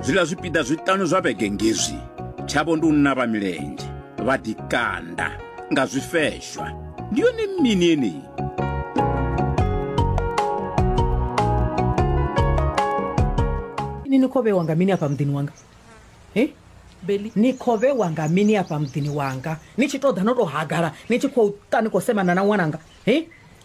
zwiḽa zwipiḓa zwiṱanu zwa vhege ngezwi tshavho ndi u navha milenzhe vha ḓikanda nga zwifeshwa ndi yone mini yeneyi ini ni khou vhewa nga mini afha muḓini wanga e beli ni khou vhewa nga mini afha muḓini wanga ni tshi tou ḓa no tou hagala ni tshi khou ta ni khou semana na ṅwananga e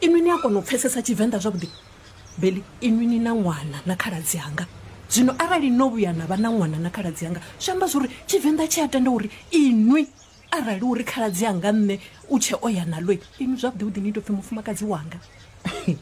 Inwi ni a kona u pfesesa Tshivenḓa zwavhuḓi? Beli, inwi ni na ṅwana na khaladzi anga. Zwino arali no vhuya na vha na ṅwana na khaladzi anga, zwi amba zwori Tshivenḓa tshi a tenda uri inwi arali uri khaladzi anga nṋe u tshe o ya nalo, inwi zwavhuḓi-vhuḓi ni tou pfi mufumakadzi wanga.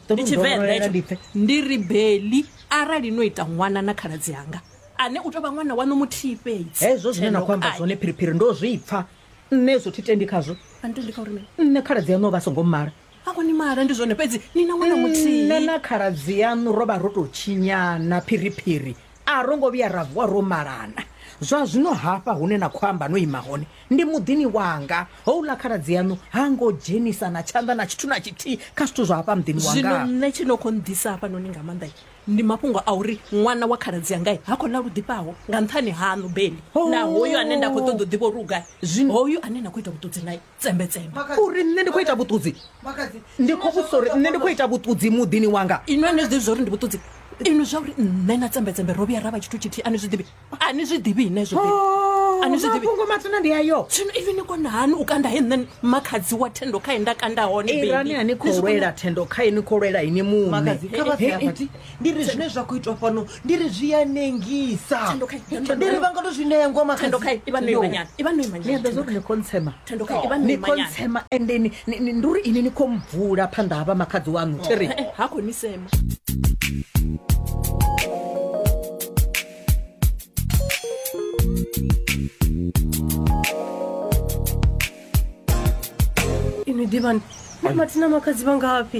Ndi Tshivenḓa etsho. Ndi ri Beli, arali no ita ṅwana na khaladzi anga, ane u tou vha ṅwana waṋu muthihi fhedzi. Hezwo zwine na khou amba zwone Phiriphiri ndo zwi pfa. nṋe hezwo thi tendi khazwo ani tendi kha uri mini nṋe khaladzi yaṋu o vha a songo mmala a koni mala ndi zwone fhedzi ni na ṅwana muthihi nṋe na khaladzi yaṋu ro vha ro tou tshinyana phiriphiri a ro ngo vhuya ra vuwa ro malana zwa zwino hafha hune na khou amba no ima hone ndi muḓini wanga houḽa khaladzi yaṋu ha ngo dzhenisa na tshanḓa na tshithu na tshithihi kha zwithu zwa hafha muḓini wanga zwino nṋe tshi no khou nḓisa hafha noni nga maanḓa ndi mafhungo a uri ṅwana wa khaladzi angai ha khou ḽa lu ḓifhaho nga nṱhani haṋu beli Oh. na hoyu ane nda khou ṱoḓa u ḓivha uri u gai zwino hoyu ane na khou ita vhuṱudzi nae tsembetsembe uri nṋe ndi khou ita vhuṱudzi ndi khou vhudzisa uri nṋe ndi khou ita vhuṱudzi muḓini wanga inwi ani zwi ḓivhi zwa uri ndi vhuṱudzi inwi zwa uri nṋe na tsembetsembe ro vhuya ra vha tshithu tshithihi ani zwi ḓivhi a ni zwi ḓivhi ine zwo a ni zwi ḓivhi mafhungo matsina ndi ayo zwino even ni kona hani u kanda he nṋe makhadzi wa thendo khae nda kanda hone irani a ni khou lwela thendo khae ni khou lwela ini muṋe makadzi kha vha ḓe afha ti ndi ri zwine zwa khou itwa fhano ndi ri zwi a nengisa ndi ri vha nga to zwi ṋea ngoa makadzi thendo khae ivha no imanyana ivha no imanyana ni a ḓo zwo ri ni khontsema Thandukani, vha no ni ima khou nyana. ntsema ende ni- ni- ni- ndi uri ini ni khou mbvula phanḓa ha vha makhadzi waṋu tiri Eh, eh, ha khou ni sema ini ḓivhani na mathina makhadzi vha ngafhi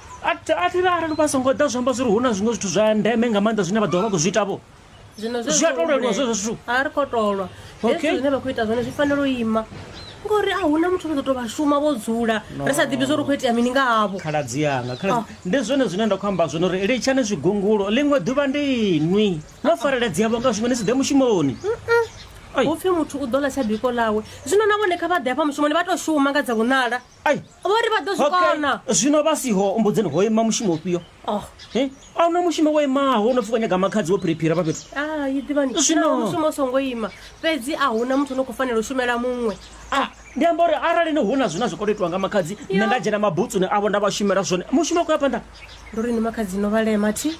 A thi a thi ri arali vha songo ḓa zwi amba zwori hu na zwiṅwe zwithu zwa ndeme nga maanḓa zwine vha ḓo vha vha khou zwi ita vho zwino Zwi a tou leluwa zwezwo zwithu. a ri khou tolwa Okay. hezwi zwine vha khou ita zwone zwi fanela u ima ngori a huna muthu ri ḓo to vha shuma vho dzula ri sa ḓivhi zwori u khou itea mini nga havho khaladzi yanga khaladzi Ah. ndi zwone zwine nda khou amba zwone uri litshani zwigungulo ḽiṅwe ḓuvha ndi inwi no fareledzea vho nga zwiṅwe ni si ḓe mushumoni Ai. hu pfi muthu u ḓo ḽa tsha biko ḽawe zwino na vhone kha vha ḓe hafha mushumoni vha tou shuma nga dza vhonala ai vho ri vha ḓo zwi kona zwino vha siho mbudzeni ho ima mushumo ufhio oh. a huna mushumo wo imaho no pfhi wa nyaga makhadzi wo phiriphira vha fhethu ah, ḓivanimushumo songo ima fhedzi a huna muthu no khou fanela u shumela muṅwe ah, ndi amba uri arali ni hu na zwine zwi kolo itiwa nga makhadzi nṋe nda dzhena mabutsuni avho nda vha shumela zwone mushumo a khou ya phanḓa ndo ri ni makhadzi no vhalema thi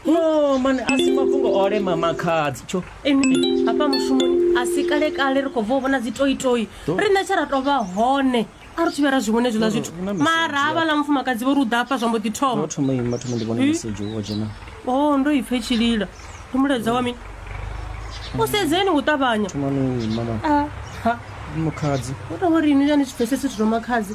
no mani a si mafhungo o lema makhadzi tsho ene hafha mushumoni a si kale kale ri khou bva u vhona dzi toitoi riṋe tshe ra tou vha hone a ri thivhe ra zwi vhone zwiḽa zwithu mara ha vhaḽa mufumakadzi vho ri u ḓa hafha zwa mbo ḓi thoma thoma ima thoma ndi vhone mesedzhi wo dzhena o ndo ipfhe tshilila ndi mulaedza wa mini u sedzeni u ṱavhanya thoma ni ima mani mukhadzi u tou ri ini ya ni tshi pfhesesi zwithu zwa makhadzi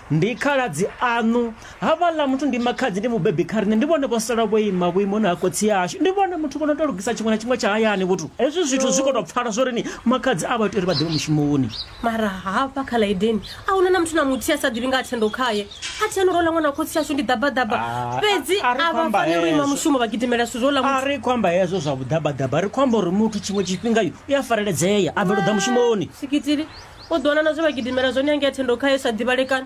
Ndi khaladzi aṋu. Havhaḽa muthu ndi makhadzi, ndi mubebi kha riṋe. Ndi vhone vho sala vho ima vhuimoni ha khotsi ashu. Ndi vhone muthu vho no tou lugisa tshiṅwe na tshiṅwe tsha hayani. Vhuthu, Hezwi zwithu zwi khou tou pfala zwo rini? Makhadzi a vha iti uri vha ḓivhe mushumoni. Mara hafha kha ḽa Edeni a hu na na muthu na muthihi a sa ḓivhi nga ha thendo khae. A thi ano ro ḽa ṅwana wa khotsi ashu, ndi ḓabaḓaba. Ah, Fhedzi a- a ri a vha khamba faneli u ima hezwo. mushumo vha gidimela zwithu zwo ḽa A muthu. ri khou amba hezwo zwa vhuḓabaḓaba, ri khou amba uri muthu tshiṅwe tshifhinga yo i a fareledzea a bvela u ḓa mushumoni sikitili u ḓiwana na zwe vha gidimela zwone yangea thendo khayo sa ḓivhalekana